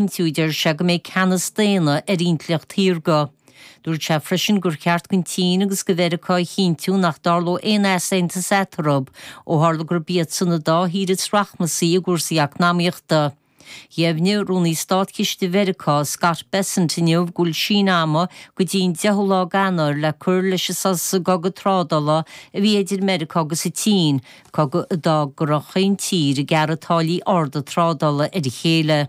chinntiú, deir sé, go mbeidh ceannas daonna ar intleacht shaorga. Dúirt sé freisin gur cheart don tSín agus do Mheiriceá a chinntiú nach dtarlódh aon easaontas eatarthu, ó tharla gurb iadsan an dá thír is rachmasaí i gcúrsaí eacnamaíochta. Dheimhnigh Rúnaí Státchiste Mheiriceá, Scott Bessent, inniu go bhfuil síneadh ama go dtí an deichiú lá d'Eanáir le cur leis an sos i gcogadh trádála a bhí idir Meiriceá agus an tSín, cogadh a d'fhág go raibh chaon tír ag gearradh táillí arda trádála ar a chéile.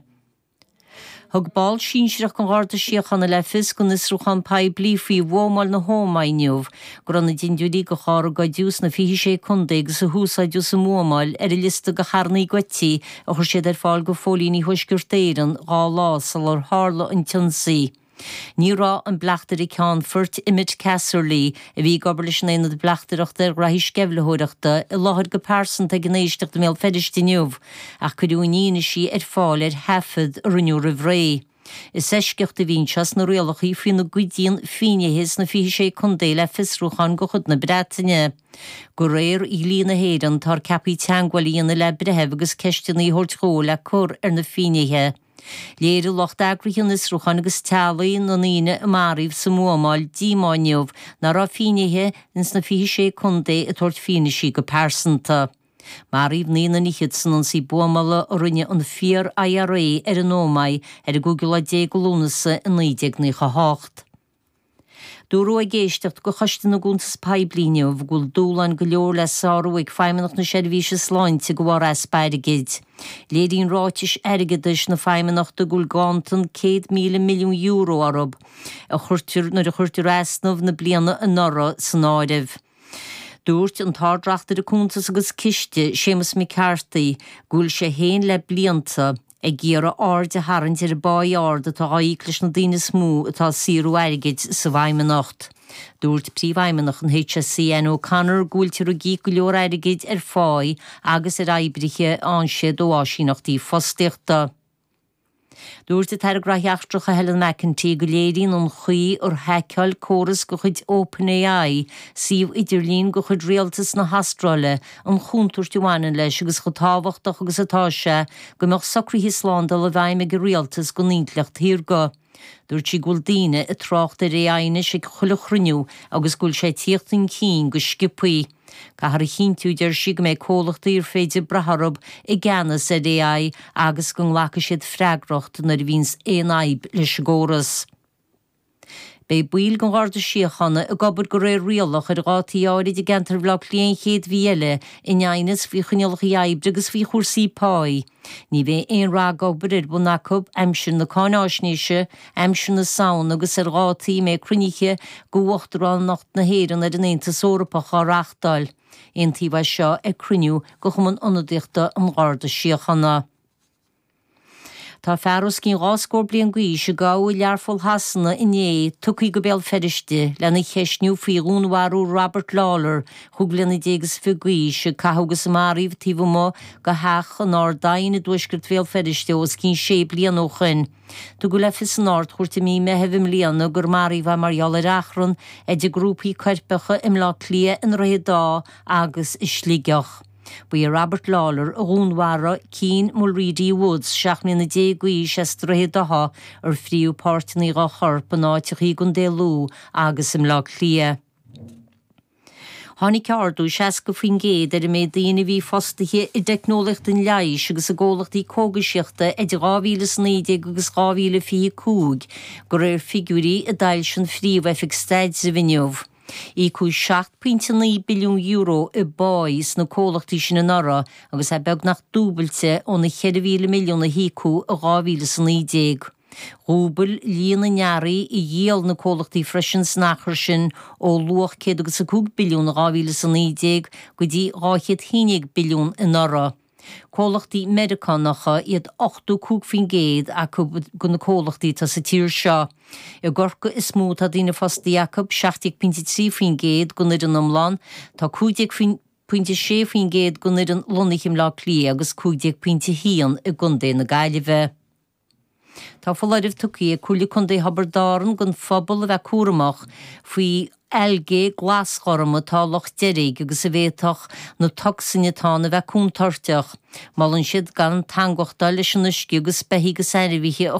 Thug ball sinsearach den Gharda Síochána le fios don fhiosrúchán poiblí faoi bhuamáil na hÓmae inniu go raibh na dindiúirí de charr a goideadh sna 26 Contae agus a húsáideadh sa mbuamáil ar an liosta de charrannaí goidte a chuir siad ar fáil do phóilíní Thuaisceart Éireann dhá lá sular tharla an t-ionsaí. Ní raibh an Bleachtaire Ceannfort, Emmet Casserly, a bhí ag obair leis an Aonad Bleachtaireachta ar ghraithí sceimhlitheoireachta, i láthair go pearsanta ag an éisteacht i mBéal Feirste inniu, ach cuireadh a n-fhianaisí ar fáil ar thaifead a rinneadh roimh ré. Is eisceacht a bhí anseo sna rialacha faoina gcuidíonn finnéithe sna 26 Contae le fiosrúcháin de chuid na Breataine. De réir dhlí na hÉireann, tá ar cheapaí teagmháil a dhéanamh le breitheamh agus ceisteanna a thabhairt dhó le cur ar na finnéithe. Léirigh lucht eagraithe an fhiosrúcháin agus teaghlaigh na ndaoine a maraíodh sa mbuamáil díomá inniu nach raibh finnéithe ins na 26 contae ag tabhairt fianaisí go pearsanta. Maraíodh naoi nduine fichead san ionsaí buamála a rinne an Fíor-IRA ar an Ómaigh ar an gcúigiú lá déag de Lúnasa i 1998. Dúradh ag éisteacht de Choiste na gCuntas Poiblí inniu go bhfuil dúshláin go leor le sárú ag Feidhmeannacht na Seirbhíse Sláinte de bharr easpa airgid. Léiríonn ráitis airgeadais na Feidhmeannachta go bhfuil ganntan €100,000 milliún orthu nuair a chuirtear easnamh na bliana anuraidh san áireamh. Dúirt an tArd-Reachtaire Cuntas agus Ciste, Séamus McCarthy, go bhfuil sé féin le blianta, ag iarraidh aird a tharraingt ar an bpáí ard atá á íoc leis na daoine is mó atá ag saothrú airgid sa bhFeidhmeannacht. Dúirt Príomhfheidhmeannach an HSE, Anne O'Connor, go bhfuiltear ag íoc go leor airgid ar pháí agus ar oibrithe a fhaigheann siad ó áisíneachtaí fostaíochta. Dúirt an tAire Gnothaí Eachtracha, Helen McEntee, go léiríonn an chaoi ar haiceáil córas de chuid OpenAI suíomh idirlín de chuid Rialtas na hAstráile an chontúirt a bhaineann leis agus chomh tábhachtach agus atá sé go mbeadh socruithe slándála i bhfeidhm ag an Rialtas don intleacht shaorga. Dúirt sí go bhfuil daoine ag trácht ar AI anois ag chuile chruinniú agus go bhfuil sé ag tíocht chun cinn go sciopthaí. Caithfear a chinntiú, a deir sí, go mbeidh comhlachtaí ar féidir brath orthu i gceannas ar AI agus go nglacfaidh siad freagracht nuair a bhíonns aon fhadhb leis an gcóras. Beidh baill den Gharda Síochána ag obair go réir rialach ar dhátaí áirid i gceantar Bhaile Átha Cliath an chéad mhí eile in aighneas faoi choinníollacha oibre agus faoi chúrsaí páí. Ní bheidh aon ragobair ar bun acu aimsir na cáinfháisnéise, aimsir na Samhna agus ar dhátaí a mbeidh cruinnithe de Uachtaránacht na hÉireann ar an Aontas Eorpach á reáchtáil. Aontaíodh air seo ag cruinniú de Chumann Ionadaíochta an Gharda Síochána. Tá fear os cionn dhá scór bliain d'aois a gabhadh i Learpholl Shasana inné tugtha go Béal Feirste lena cheistniú faoi dhúnmharú Robert Lawlor, chúig bliana déag is fiche d'aois, a caitheadh agus a maraíodh taobh amuigh de theach in Ard Eoin i dtuaisceart Bhéal Feirste os cionn sé bliana ó shoin. Tugadh le fios san Ard-Chúirt i mí Meithimh i mbliana gur maraíodh é mar gheall ar achrann idir grúpaí coirpeacha i mBleá Cliath, i nDroichead Átha agus i Sligeach. Ba é Robert Lawlor a dhúnmharaigh Keane Mulready Woods seacht mbliana déag d'aois as Droichead Átha ar fríothadh páirteanna dhá chorp in áiteacha i gContae Lú agus i mBleá Cliath. Tháinig ardú 60% ar an méid daoine a bhí fostaithe i dteicneolaíocht an leighis agus i gcomhlachtaí cógaisíochta idir 2000 is 19 agus 2025, go réir figiúirí a d'fhoilsigh an Phríomh-Oifig Staidrimh inniu. Íocadh €7.9 billiún i bpá sna comhlachtaí sin anuraidh agus é beagnach dúbailte ón an 4,000 milliún a híocadh i 2000 is 19. Dhúbail líon na n-earraí a dhíol na comhlachtaí freisin san achar sin ó luach céad agus a cúig billiún i 2000 is 19 go dtí dhá chéad haon déag billiún anuraidh. Comhlachtaí Meiriceánacha iad 85% acu de na comhlachtaí atá sa tír seo. I gCorcaigh is mó atá daoine fostaithe acu, 17.3% den fhoireann iomlán, tá 15.6% den fhoireann lonnaithe i mBleá Cliath agus 15.1 i gContae na Gaillimhe. Tá foláireamh tugtha ag Comhairle Contae Thiobraid Árann don phobal a bheith cúramach faoi algae glasghorm atá i Loch Deirg agus a bhféadfadh na tocsain atá ann a bheith contúirteach. Molann siad gan teangmháchtáil leis an uisce agus beithígh is ainmhithe a